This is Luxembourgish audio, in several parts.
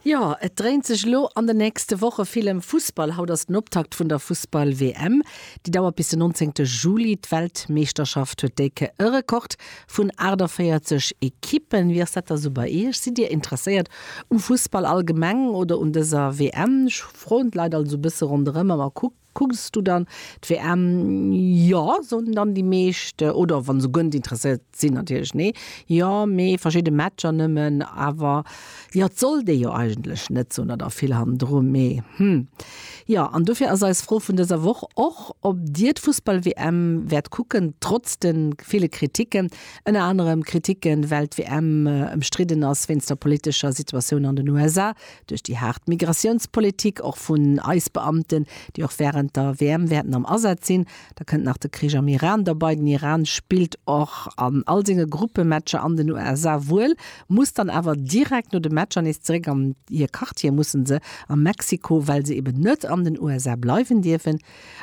Jo, et dréint sech elo an den nächste Woche vill ëm Fussball. Haut ass den Optakt vun der Fussball-WM. Déi dauert bis den 19 Juli. D'Weltmeeschterschaft huet déi Kéier e Rekord vun 48 Ekippen. Wéi ass dat da sou bei Iech? Sidd Dir interesséiert um Fussball allgemeng oder un dëser WM? Ech froen d'Leit also e bësse ronderëm a mer kucken, Kucks du dann d'WM? Jo, soen dann déi meescht. Oder wann se gönnt interesséiert sinn, natierlech nee. Jo, mee verschidde Matcher nëmmen. Awer jo, et sollt ee jo eigentlech net soen, dat ass vill hannendru. Mee hm. Jo, an dofir ass eis Fro vun dëser Woch och, ob dir d'Fussball-WM wäert kucken, trotz de ville Kriticken. Ënner anerem Kriticken, well d'WM ëmstridden ass wéinst der politescher Situatioun an den USA. Duerch déi haart Migratiounspolitik, och vun eis Beamten, déi och wärend der WM wäerten am Asaz sinn, da kënnt nach de Krich am Iran derbei, den Iran spillt och an all senge Gruppematcher an den USA wuel, muss dann awer direkt no de Matcher nees zeréck an hir Quartier, mussen se a Mexiko, well se eben net an den USA bleiwen dierfen.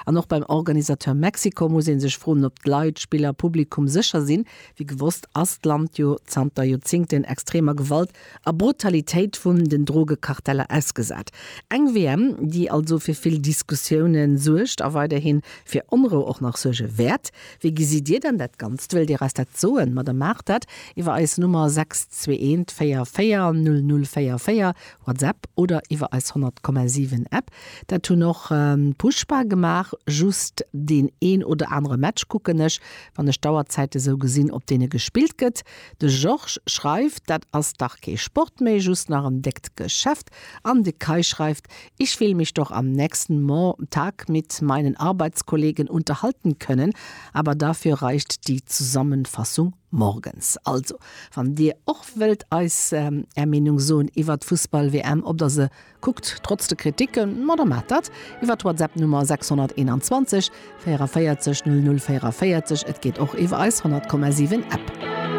An och beim Organisateur Mexiko muss ee sech froen, ob d'Leit, Spiller, Publikum sécher sinn. Wéi gewosst ass d'Land jo zanter Joerzingten extremer Gewalt a Brutalitéit vun den Drogekarteller ausgesat. Eng WM, déi also fir vill Diskussioune suergt a weiderhi fir Onrou och nach suerge wäert. Wéi gesitt Dir dann dat Ganzt? Wëllt Dir eis dat soen? Ma da maacht dat iwwer eis Nummer 621440044, WhatsApp, oder iwwer eis 100,7 App. Dat hunn och Pushpa gemaach. Just deen een oder anere Match kucken ech, wann ech d'Auerzäite sou gesinn, op deene gespillt gëtt. De Georges schreift, Dat ass dach kee Sport méi, just nach en déckt Geschäft. An de Kai schreift, Ich will mich doch am nächsten Montag mit meinen Arbeitskollegen unterhalten können, aber dafür reicht die Zusammenfassung morgens. Also, wann Dir och wëllt eis Är Meenung soen iwwert d'Fussball-WM, ob Der se kuckt, trotz de Kritiken, ma da maacht dat iwwert d'Whatsapp-Nummer 621 44 00 44, et geet och iwwer eis 100,7 App.